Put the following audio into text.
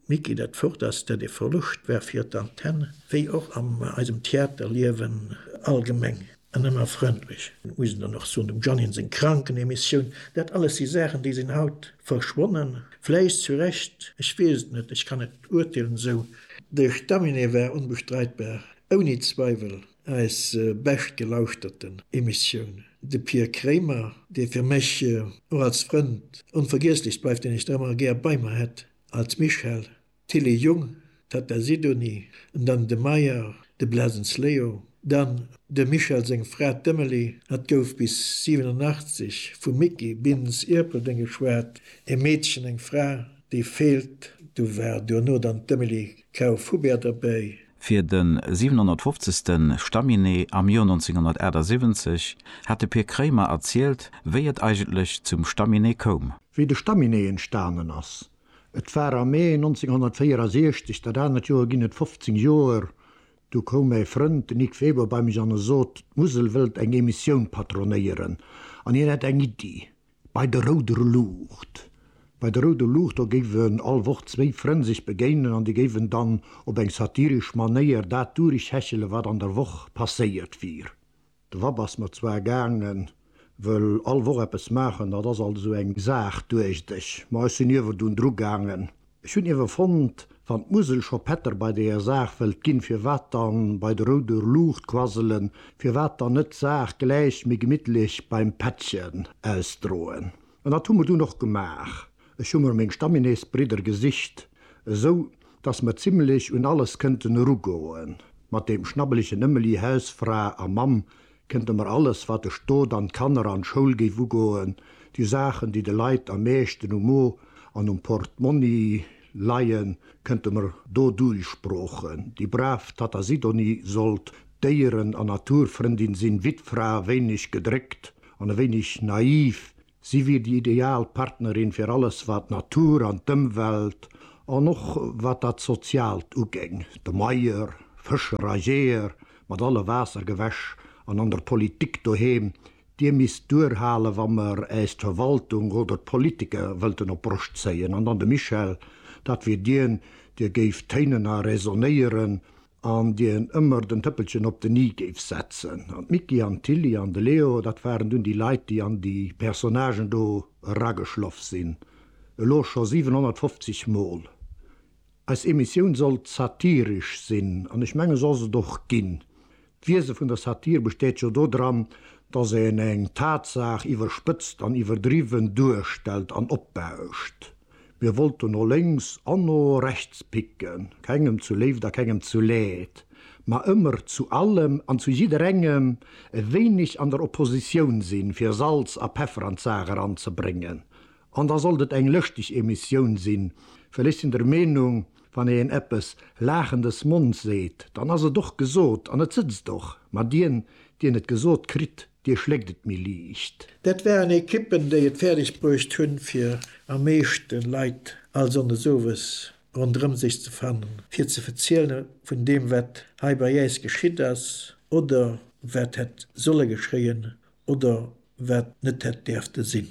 Micky, Dat Fort ass dat ee Verloscht war fir d'Antenne, wéi och an eisem Theaterliewen allgemeng. An ëmmer frëndlech, muss een dann och soen, dem Jeannyn seng Krankenemissioun, dat alles si Saachen, déi sinn haut verschwonnen. Vläicht zu Recht, ech weess et net, ech kann net urteelen esou. De Staminee war onbestreitbar, ouni Zweiwel. Eis bescht gelauschterten Emissioun. De Pir Kremer, dee fir mech och als Frënd onvergiesslech bleift, deen ech ëmmer gär bei mer hätt, als Michel, d'Tilly Jung, d'Tatta Sidonie, an dann de Meyer, de Blesens Leo, dann dem Michel seng Fra, d'Emily, hat gouf bis 87 vum Micky Bintz Ierpeldeng geschwat, e Meedchen, eng Fra, déi feelt, du war duerno dann d'Emily Kauf-Hubert derbäi. Fir de 750. Staminee am Joer 1978 hat de Pir Kréimer erzielt, wéi et eigentlech zum Staminee koum. Wéi de Staminee entstanen ass. Et war am Mee 1964, dat anert Joer ginn et 15 Joer, du koum mäi Frënd, de Nic Weber, bei mech an e sot, d'Musel wëllt eng Emissioun patronéieren an hien hätt eng Iddi. Bei der rouder Luucht. Bei der rouder Luucht, do géifen all Woch zwéi Frënn sech begéinen an déi géifen dann op eng satiresch Manéier dat durechhechele wat an der Woch passéiert wier. De Vapp ass mer zwar gaangen, wëll all Woch eppes maachen, dat ass alt esou eng Saach, duecht ech, ma ech sinn ierwerdun drugaangen. Ech hunn iewer fonnt, wann d'Musel scho Pätter bei deeër Saach wëllt ginn, firwat dann bei de rouder Luucht quasselen, firwat dann net d'Saach gläich méi gemittlech beim Pättchen ausdroen? An dat hu mer dunn och gemaach. Ech hu mer meng Stamminesbridder gesicht, esou dass mer zimlech un alles kënnten erugoen, mat deem schnabbelegen Ëmmeli, Hausfra a Mamm, Kënnte mer alles, wat de Stot an d'Kanner an d'Schoul géif ugoen, déi Saachen, déi de Leit am meeschten um Mo an um Portmonni leien, kënnte mer do duilsproochen, déi brav Tatta Sidonie sollt Déieren an Naturfrëndin sinn, Wittfra, wéineg gedréckt an e wéineg naiv, Si wier déi ideal Partnerin fir alles, wat d'Natur an d'Ëmwelt an och wat dat Soziaalt ugéing, de Meier, Fëscher a Jeeër mat alle Waassergewäsch an an der Politik doheem, Dir misst duerhalen, wa mer äis d'Verwaltung oder d'Politiker wëllten op d'Broscht zéien. An dann de Michel, dat wier dien, dee géif téinen a räsonéieren, an déi en ëmmer den Tëppelchen op den i géif setzen an d'Micky an d'Tilly an de Leo, dat waren dunn déi Leit, déi an déi Personnagen do erageschloff sinn, elo scho 750 Mol. Eis Emissioun sollt satiresch sinn an ech mengen, se ass et och ginn. D'Wiese vun der Satire besteet jo dodran, dass een eng Tatsaach iwwerspëtzt an iwwerdriwwen duerstellt an opbauscht. Mir wollten no lénks an no rechts picken, kengem zu Léift a kengem zu Leed, ma ëmmer zu allem an zu jidderengem e wéineg an der Oppositioun sinn, fir Salz a Peffer an d'Saach eranzebréngen. An da sollt et eng lëschteg Emissioun sinn, well ech sinn der Meenung, wann een eppes Laachen des Monds seet, dann ass et och gesot an et sëtzt och. Ma dien, dien et gesot kritt, Dir schléckt et méi liicht. Dat waren Ekippen, déi et fäerdeg bruecht hunn, fir am meeschte Leit all Sonndes owes ronderëm sech ze fannen, fir ze verziele vun deem, wat hei bei äis geschitt ass oder wat hätt solle geschéien oder wat net hätt däerfte sinn.